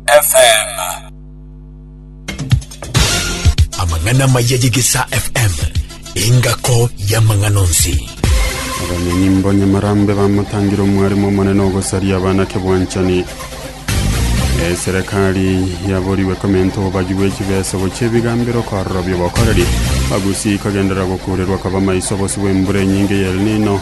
FM. Amang'ana maya y'Egesaa FM, engako y'amang'ana onsi. Abanyonyi mbonyamarambe bamotangire omwarimu omonene ogosaria abanake bwanchani eserekari yaboriwe komenta obobagi bw'echibeso gochia ebigambero korora biobokoreri bagusi ikagenderera gokurerwa kaba maiso bosi bw'embura enyinge y'El Nino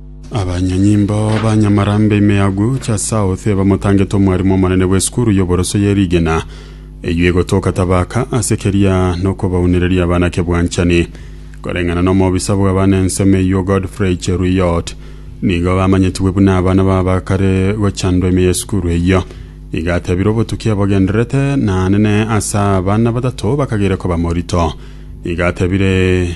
Abanyanyimbo ba Nyamarambe ime ya Agucha South bamotangete omwarimu omonene bw'esukuru y'oboroso ye Rigena eyio egotoka Tabaka ase keria nokobaunereria abana kebwanchani. Koreng'ana n'omobisa bw'abana ensemo eyio Godfrey Cheruiyot nigo bamanyetigwe buna abana babakare gochandwa ime y'esukuru eyio. Iga atebire obotuki ebogenderete naanene ase abana batato bakagire koba morito. Iga atebire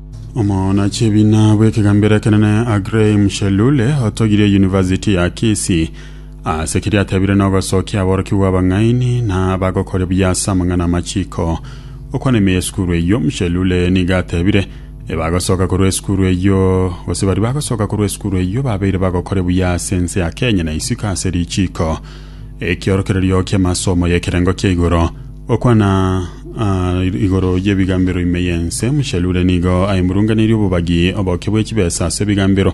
Omonachi ebina bw'ekegambero ekenene Agrey Mshelule otogirie University ya Kisii ase keria atebire nogosokia aborokigwa abang'aini na bagokore buya ase amang'ana amachiko okwana ime esukuru eyio Mshelule niga atebire ebagosoka korwa esukuru eyio gose bari bagosoka korwa esukuru eyio babeire bagokore buya ase ense ya Kenya na isiko ase richiko ekiorokererio ki'amasomo y'ekerengo kia igoro Gokwana aa igoro y'ebigambero ime y'ense, Mushalule nigo aimurunganirie obobagi oboke bw'echibesa ase ebigambero,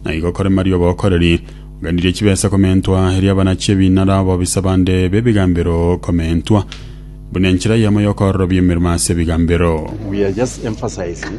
na igo kore Maria obokoreri. Oganirie echibesa komentwa, erio abanachi ebinara abobisa bande b'ebigambero komentwa, buna enchera yamo y'okoororobia emeremo ase ebigambero. We are just emphasizing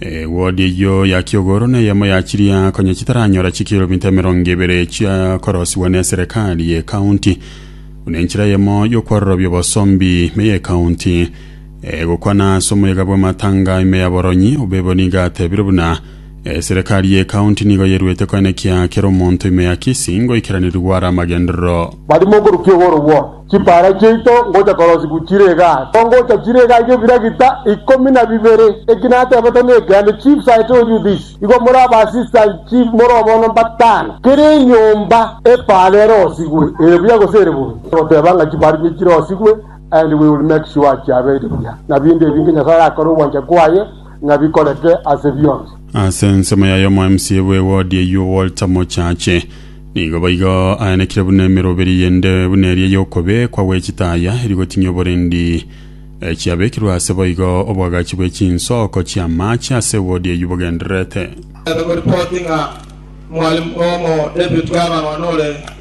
Ewodi eyio ya kiogoro neyemo ya chiria konya chitaranyora chikilomita emerongo ebere chia korosiwa n'eserekari y'ekaunti, buna enchera eyemo y'okwarorobia obosombi ime y'ekaunti. Egokwana ase omoyega bw'amatanga ime ya Boronyi, Obebo nigo atebire buna eserekari y'ekaunti nigo yeruete koenekia kera omonto ime ya Kisii ngoikeraneria gwara amagenderero. Barimo okorukia ogoro gwao. Chipaara chiaito ngocha korosigu chire igaa, tongocha chire igaa iga ebiragita ikomi na bibere. Eki natebete nekiande, chiefs I told you this, igo more aba assistant chief more obono mbatano, kera enyomba epaara erosigwe ere buya gose ere bobe, goteba ng'a chipaara chiaito chirosigwe and we will make sure chiabeire buya, na binde ebi inki Nyasaye akore ogwancha kwaye ng'a bikoreke ase bionsi. Ase ensemo yaye, Omomca bw'ewodi eyio Walter Mochache, Nigo boigo aanekire buna emeroberi yende buna eria y'okobekwa gwe chitaya eri gotinyia oborendi, eh, chiabekirwe aase boigo oboagachi bwe chinsoko chi'amaache ase ewodi eyio bogendererete. Ebe goripoti ng'a mwalimu omo David Garland one ore